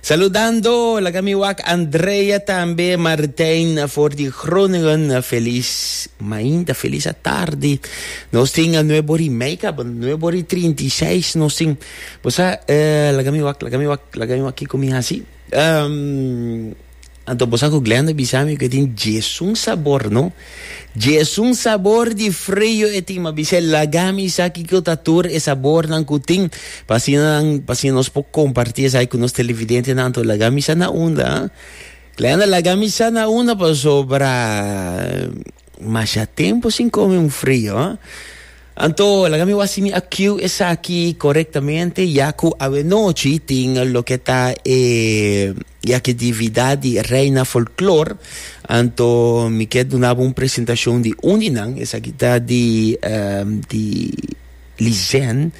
Saludando laga mi wak Andrea tambe Martijn for di Groningen felis mainta felis atardi nos tin nuebo ri Meica nuebo ri trinta i seis nos tin bo sa eh, laga mi wak laga mi wak laga mi wak kiko mi hasi um, Anto bo sa cu Glenda bisa mi cu e tin djesun sabor, no? Djesun sabor di frio e tin, ma bisa e laga mi sa kico ta tur e sabornan cu tin, pa asina nan, pa asina nos por comparti esai cu nos televidentenan. Anto laga mi sa na unda, ha? Glenda, laga mi sa na unda pasobra masha tempo sin come un frio, ha? Anto laga mi wak si mi a kiu esaki corectamente, ya cu awe nochi tin loke ta e. I aki di vida di Reina Folklor, anto mi ke duna bo un presentashon di un di nan, esaki ta di ehm di Lizen,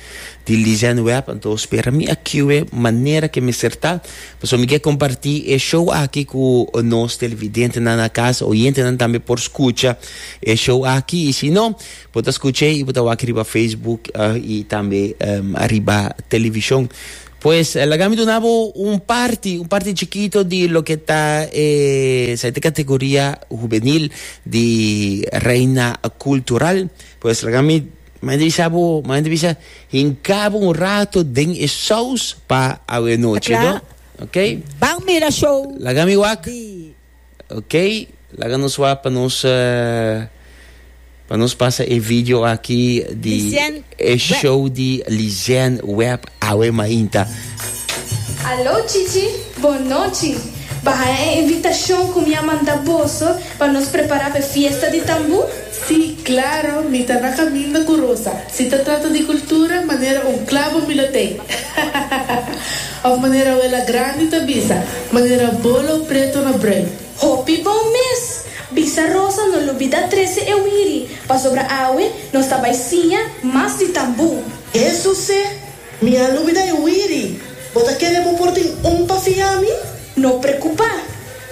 di Lizen Web, anto spera mi a kiwe manera ke mester ta, pasobra mi ke kompartí e show aki ku nos televidentenan na kas, oyentenan tambe por skucha e show aki, i si no bo ta skuch'e i bo ta wak riba Facebook i tambe ehm ariba televishon. Pues laga mi duna bo un parti, un parti chikito di loke ta e saite kategoria hubenil di Reina Kultural. Pues laga mi mañana bisa bo, mañana bisa hinka bo un rato den e saus pa awe nochi, no? Oké. Ban mira show. Laga mi wak. Ok, laga nos wak pa nos pa nos pasa e video aki di e show di Lizen Web awe mainta. Aló Chichi, bon nochi. Bahaya e invitacion cu mi a manda boso pa nos prepara p'e fiesta di tambu. Sí, claro, mi ta na caminda cu Rosa. Si ta trata di cultura, manera un clavo mi lo tey. Hahahaha! Of manera Abuela Grandi ta bisa, manera bolo preto na brui. Hopi bon mes! Bisa Rosa no lo bida trece e wiri, pasobra awe nos ta bay siña mas di tambú. Eso seh! Mi a lubida e wiri. Bo ta kere bo por tin un pa fia mi? No preocupa.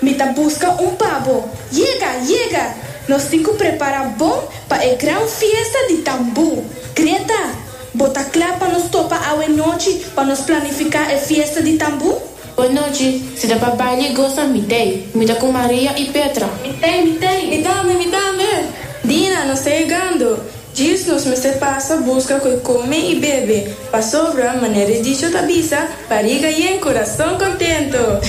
Mi ta busca un pa bo. Yega! Yega! Nos tin cu prepara bon pa e gran fiesta di Tambu. Greta, Bo ta cla pa nos topa awe nochi pa nos planifica e fiesta di Tambu? Bon nochi, si ta pa baile y gosa, mi tey. Mi ta cu Maria y Petra. Mi tey, mi tey. Mi tambe, mi tambe. Dina, nos ta yegando. Djis nos mester pasa busca cu e come y bebe. Pasobra, manera e dicho ta bisa, Bariga yen, corazon contento.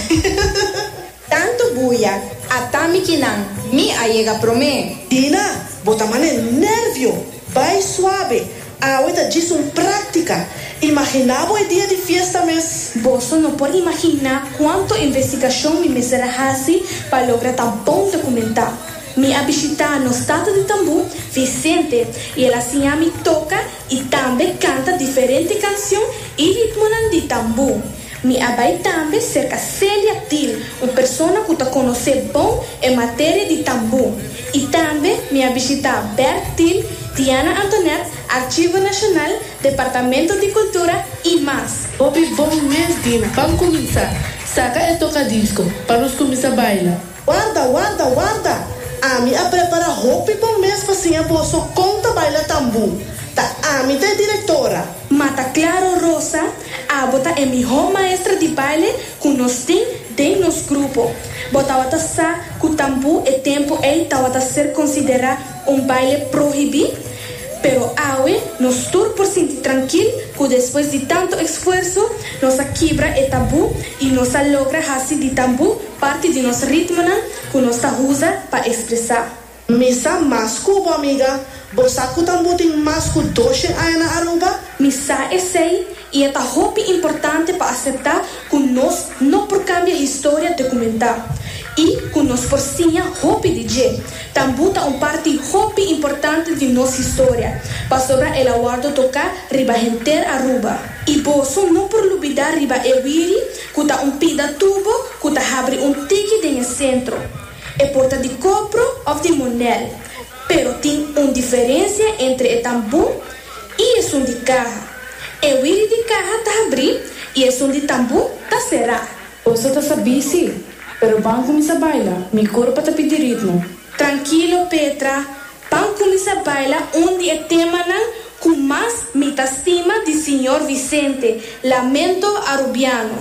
Tanto buya, ata mikinan. Mi a yega prome. Dina, bo ta mane nervio. Bay suabe. Awe ta djis un práktika. Imaginá bo e dia di fiesta mes. Boso no por imaginá kuantu investigashon mi mester a hasi pa logra ta bon dokumentá. Mi a bishitá nos tata di tambú, Vicente, i el a siña mi toka i tambe kanta diferente kanshon i ritmonan di tambú. Mi a bai tambe serka Celia Thiel, un persona ku ta konosé bon e materia di tambú. I tambe mi a bishitá Bert Thiel, Diana Antoinette, Archivo Nacional, Departamento di Cultura i mas. Hopi bon mes Dina, pam kuminsá saka e tokadisko pa nos kuminsá baila. Warda, warda, warda! Ami a prepara hopi bon mes pa siña boso kon ta baila tambu. Ta ami ta e direktora. Ma ta klaro Rosa, abo ta e mihó maestra di baile ku nos tin den nos grupo. Bo tabata sa ku tambu e tempu ei tabata ser konsiderá un baile prohibí? Pero awe nos tur por sinti trankil ku despues di tantu eksfuerso, nos a kibra e tabú i nos a logra hasi di tambu Parti di nos ritmonan ku nos ta usa pa ekspresá. Mi sa mas ku bo amiga. Bo sa ku tambo tin mas ku doshen aña na Aruba? Mi sa esei, i e ta hopi importante pa aseptá ku nos no por kambia historia dokumentá i ku nos por siña hopi di dje. Tambo ta un parti hopi importante di nos historia, pasobra el a wòrdu toká riba henter Aruba. I boso no por lubidá riba e wiri ku ta un pida tubo ku ta habri un tiki den e sentro. E por ta di kopro òf di monèl, pero tin un diferensia entre e tambú i esun di kaha, e wiri di kaha ta habrí i esun di tambú ta será. Boso ta sa bisi, pero ban kuminsá baila, mi kurpa ta pidi ritmo. Trankilo Petra! Pan cuminsa baila un di e temanan cu mas mi ta stima di Siñor Vicente, Lamento Arubiano.